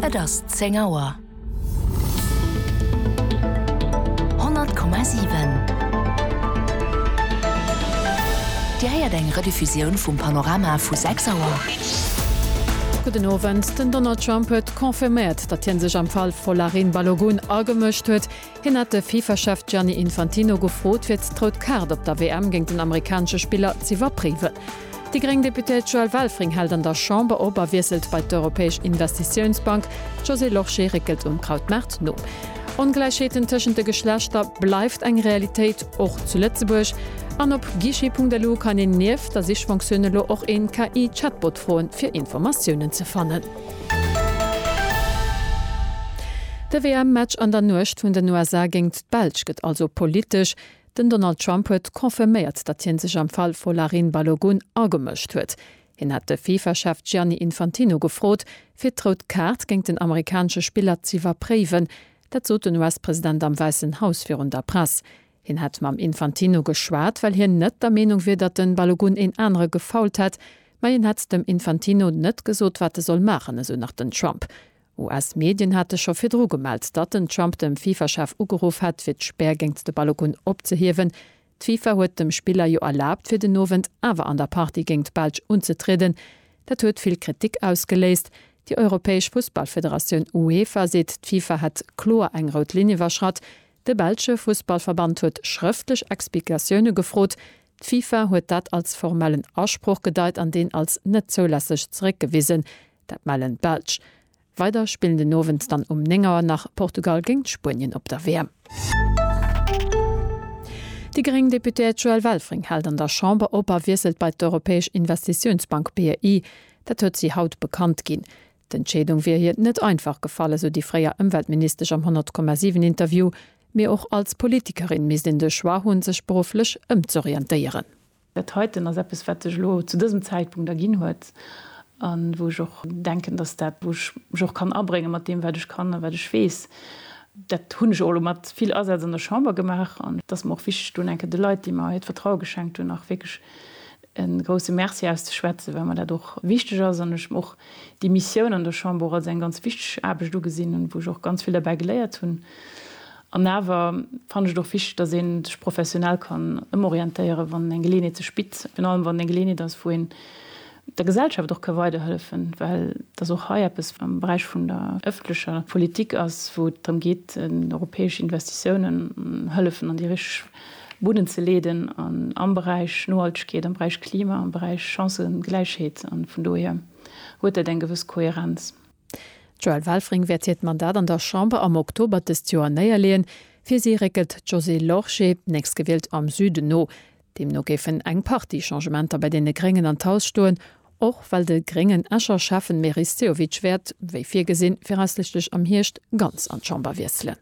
Et ass zéng Auer. 100,7 Dir héiert eng Rediffusioun vum Panorama vu 6 Auer. Gudden Owend, Den Donald Trump huet confirméiert, datt hien sech am Fall Folarin Balogun agemëscht huet. Hien hat de FIFA-Chef Gianni Infantino gefrot, fir d'rout Kaart op der WM géint den amerikanesche Spiller z'iwwerpréiwen. Déi gréng Deputéiert Joëlle Welfring hält an der Chamber op a wiesselt bei d'Europäesch Investitiounsbank. D'Josée Lorsché réckelt um Krautmaart no. Ongläichheeten tëschent de Geschlechter bleift eng Realitéit, och zu Lëtzebuerg. An op guichet.lu kann een nieft der Sichfonktioun elo och een KI-Chatbot froen, fir Informatiounen ze fannen. De WM-Match an der Nuecht vun den USA géingt d'Belsch gëtt also politesch. Den Donald Trump huet confirméiert, datt hie sech am Fall Folarin Balogun agemëscht huet. Hien hat de Fifa-Chef Gianni Infantino gefrot, fir d'Rout Kaart géint den amerikanesche Spiller z'iwwerpréiwen. Dat sot den US-President am Wäissen Haus virun der Press. Hien hätt mam Infantino geschwat, well hien net der Meenung wier, datt de Balogun een anere gefoult hätt, ma hien hätt dem Infantino net gesot, wat e soll maachen, esou nach den Trump. US-Medien hate scho virdru gemellt, datt den Trump dem FIFA-Chef ugeruff hätt, fir d'Spär géingt de Balogun opzehiewen. D'FIFA huet dem Spiller jo erlaabt, fir den Owend awer an der Partie géingt d'Belsch unzetrieden. Dat huet vill Kritik ausgeléist. Déi europäesch Fussballfederatioun UEFA seet, d'FIFA hätt kloer eng rout Linn iwwerschratt. De belsche Fussballverband huet schrëftlech Explikatioune gefrot. D'FIFA huet dat als formellen Asproch gedeit an deen als net zoulässeg zeréckgewisen. Dat mellen d'Belsch. Weider spillen den Owend dann um 9 Auer nach Portugal géint Spuenien op der WM. Déi gréng Deputéiert Joëlle Welfring hält an der Chamber op a wiesselt bei d'Europäesch Investitiounsbank, BEI. Dat huet si haut bekannt ginn. D'Entscheedung wier hir net einfach gefall, esou déi fréier Ëmweltministesch am 100,7 Interview. Mee och als Politikerin misst een de Choix hunn, sech berufflech ëmzorientéieren. Dat heiten ass eppes, wat sech elo zu dësem Zäitpunkt erginn huet a wou ech och denken, dass dat, wou ech mech och kann abréngen, mat deem wat ech kann a wat ech weess, dat hunn ech och elo mat vill Asaz an der Chamber gemaach, an et ass mer och wichteg, dunn eng Kéier de Leit, déi mer hiert Vertraue geschenkt hunn, nach wierklech e grousse Merci auszeschwätzen, well mer dat och wichteg ass an ech och déi Missioun an der Chamber als eng ganz wichteg Aarbecht ugesinn hunn, wou ech och ganz vill derbäi geléiert hunn. An awer fannen ech et och wichteg, dass ee sech professionell kann ëmorientéieren, wann eng Geleeënheet sech bitt, virun allem wann et eng Geleeënheet ass, wou een der Gesellschaft och ka weiderhëllefen, well et ass och hei eppes am Beräich vun der ëffentlecher Politik ass, wou et drëm geet, europäesch Investitiounen, Hëllefen an déi richteg. Buden ze leeden an am Beräich Nohaltegkeet, am Beräich Klima, am Beräich Chancëgläichheet an vun dohier huet dat eng gewëss Kohärenz. D'Joëlle Welfring wäert hiert Mandat an der Chamber am Oktober dëst Joer néierleeën. Fir si réckelt d'Josée Lorsché, nächstgewielt am Süden, no. Deemno géifen eng Partie Changementer bei deene Gréngen an d'Haus stoen, och well de gréngen Escher Schäffen Meris Sehovic wäert, wéi virgesinn, viraussiichtlech am Hierscht ganz an d'Chamber wiesselen.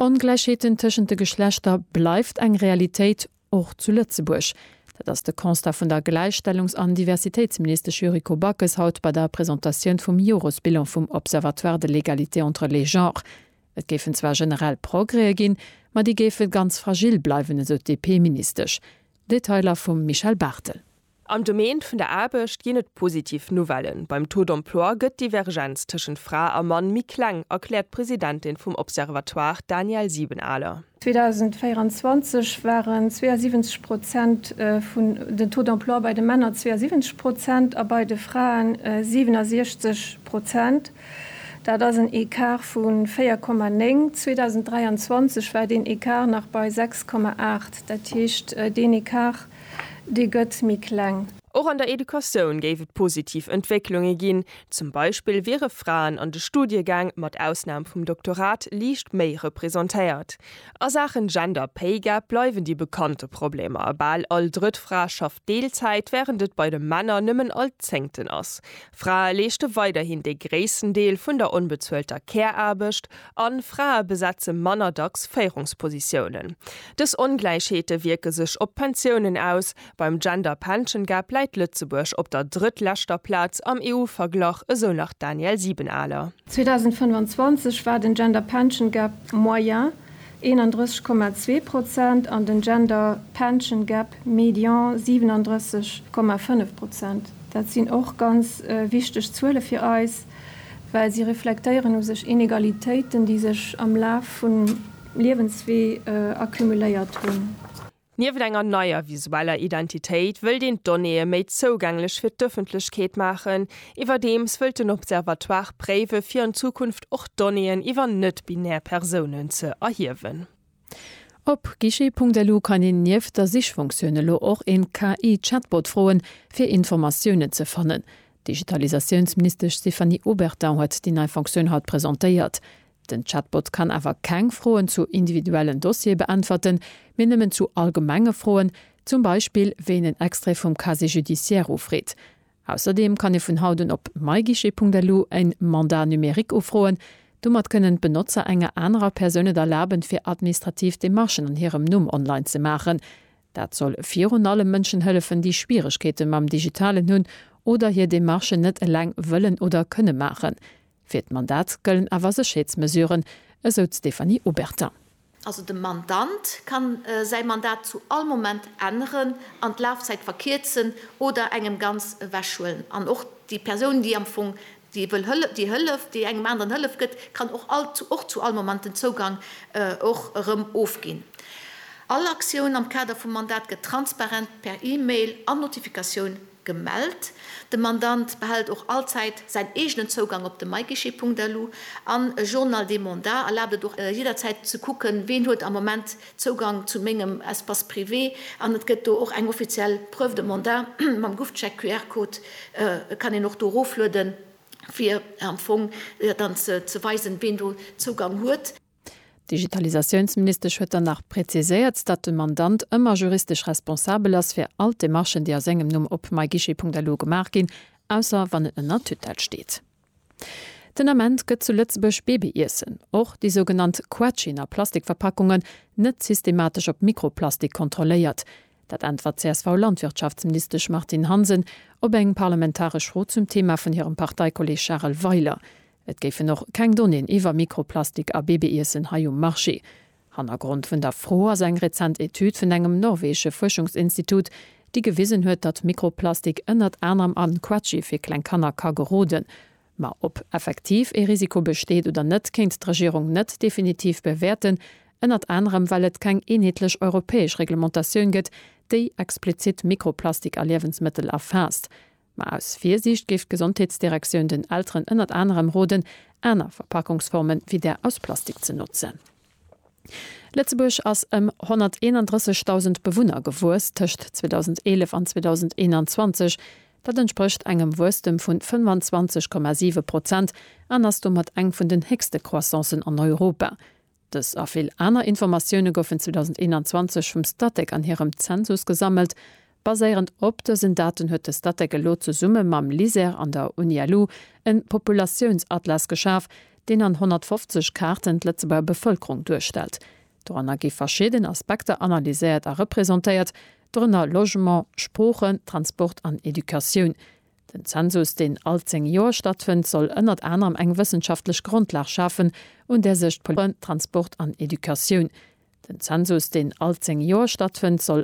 Ongläichheeten tëschent de Geschlechter bleift eng Realitéit, och zu Lëtzebuerg. Dat ass de Constat vun der Gläichstellungs an Diversitéitsministesch Yuriko Backes haut bei der Presentatioun vum Joresbilan vum Observatoire de l'égalité entre les genres. Et géifen zwar generell Progrèe ginn, ma déi géife ganz fragil bleiwen, esou d'DP-Ministesch. Detailer vum Michel Barthel. Am Domaine vun der Aarbecht ginn et positiv Nouvellen, Beim Taux d'emploi gëtt d'Divergenz tëschent Fra a Mann méi kleng, erkläert d'Presidentin vum Observatoire, Danièle Siebenaler. 2024 waren 72 Prozent vun den Taux d'emploi bei de Männer 72 Prozent a bei de Fraen 67 Prozent. Dat ass en Ecart vu 4,9. 2023 war deen Ecart nach bei 6,8. Dat heescht, deen Ecart Dee gëtt méi kleng. Och an der Educatioun géif et positiv Entwécklunge ginn. Zum Beispill wiere Fraen an de Studiegäng, mat Ausnam vum Doktorat, liicht méi representéiert. A Saachen Gender Pay Gap bleiwen déi bekannte Problemer, bal all drëtt Fra schafft Deelzäit, wärend et bei de Männer nëmmen all zéngten ass. Frae leeschte weiderhin dee gréissten Deel vun der onbezuelter Care-Aarbecht. A Frae besetze manner dacks Féierungspositiounen. Dës Ongläichheete wierke sech op d'Pensiounen aus, Beim Gender Pension Gap läit Lëtzebuerg op der drëttleschter Plaz am EU-Verglach, esou nach d'Danièle Siebenaler. 2025 war den Gender Pension Gap moyen 31,2 Prozent an den Gender Pension Gap median 37,5 Prozent. Dat sinn och ganz wichteg Zuele fir eis. well si reflektéieren u sech Inegalitéiten, déi sech am Laf vum Liewenswee accumuléiert hunn. Nieft enger neier visueller Identitéit wëllt een d'Donnéeë méi zougänglech fir d'Ëffentlechkeet maachen. Iwwerdeems wëllt den Observatoire préiwe fir an Zukunft och Donnéeën iwwer net-binär Persounen ze erhiewen. Op guichet.lu kann een nieft der Sichfunktioun elo och een KI-Chatbot froen, fir Informatiounen ze fannen. D'Digitalisatiounsministesch Stéphanie Obertin huet déi nei Funktioun haut presentéiert. Den Chatbot kann awer keng Froen zu individuellen Dossiere beäntwerten, mee nëmmen zu allgemenge Froen, zum Beispill wéi een en Extrait vum Casier judiciaire ufreet. Ausserdeem kann ee vun haut un op myguichet.lu en Mandat numérique ufroen. Domat kënnen d'Benotzer enger anerer Persoun et erlaben, fir administrativ Demarchen an hirem Numm online ze maachen. Dat soll virun allem Mënschen hëllefen, déi Schwieregkeete mam Digitalen hunn oder hir Demarchen net eleng wëllen oder kënne maachen. Fir d'Mandat gëllen awer Sécherheetsmesuren, esou d'Stéphanie Obertin. Also de Mandant ka säi Mandat zu all Moment änneren an d'Lafzäit verkierzen oder engem ganz ewechhuelen. An och déi Persoun, déi am Fong déi wëll hël-, déi hëlleft, déi engem aneren Hëllef gëtt, kann och all, och zu all Moment den Zougang och erëm ofginn. All Aktioun am Kader vum Mandat gëtt transparent per E-Mail an Notifikatioun Gemellt. De Mandant behält och allzäit säin eegenen Zougang op de myguichet.lu an e Journal des mandats erlaabt et och jidderzäit ze kucken, ween huet am Moment Zougang zu mengem Espace privé an et gëtt do och eng offiziell Preuve de mandat mam Gufcheck QR-Code, kann een och do eroflueden, fir am Fong dann ze weisen, ween do Zougang huet. D'Digitalisatiounsministesch huet dann nach präziséiert, datt de Mandant ëmmer juristesch responsabel ass fir all d'Demarchen, déi a sengem Numm op myguichet.lu gemaach ginn, ausser wann en ënner Tutelle steet. Den Ament gëtt zu Lëtzebuerg Babyiessen, och déi sougenannt Quetschen a Plastikverpackungen, net systematesch op Mikroplastik kontrolléiert. Dat äntwert d'CSV-Landwirtschaftsministesch Martine Hansen op eng parlamentaresch Fro zum Thema vun hirem Parteikolleeg Charel Weiler. Et géifen och keng Donnéeën iwwer Mikroplastik a Babyiessen hei um Marché. Hannergrond vun der Fro ass eng rezent Etüd vun engem norweesche Fuerschungsinstitut, déi gewisen huet, datt Mikroplastik ënnert anerem an Quetschi fir kleng Kanner ka geroden. Ma ob effektiv ee Risiko besteet oder net, kéint d'Regierung net definitiv bewäerten, ënnert anerem well et keng eenheetlech europäesch Reglementatioun gëtt, déi explizitt Mikroplastik a Liewensmëttel erfaasst. Ma aus Virsiicht géif d'Gesondheetsdirektioun den Elteren ënnert anerem roden, aner Verpackungsforme wéi där aus Plastik ze notzen. Lëtzebuerg ass ëm 131.000 Bewunner gewuess tëscht 2011 an 2021. Dat entsprécht engem Wuesstem vu 25,7 Prozent an ass domat eng vun den héchste Croissancen an Europa. Dës a vill aner Informatioune goufen 2021 vum Statec an hirem Zensus gesammelt. Baséierend op dësen Daten huet de Statec elo zesumme mam LISER an der Uni-LU e Populatiounsatllas geschaf, deen an 150 Kaarten d'Lëtzebuerger Bevëlkerung duerstellt. Doranner gi verschidden Aspekter analyséiert a representéiert, dorënner Logement, Sproochen, Transport an Educatioun. Den Zensus, deen all zéng Joer stattfënnt, soll ënnert anerem eng wëssenschaftlech Grondlag schafen, un där sech d'Politik, d'Wirtschaft, d'Souzialpolitik, d'Fraen, d'Transport an Educatioun, Den Zensus, deen all zéng Joer stattfënnt, soll.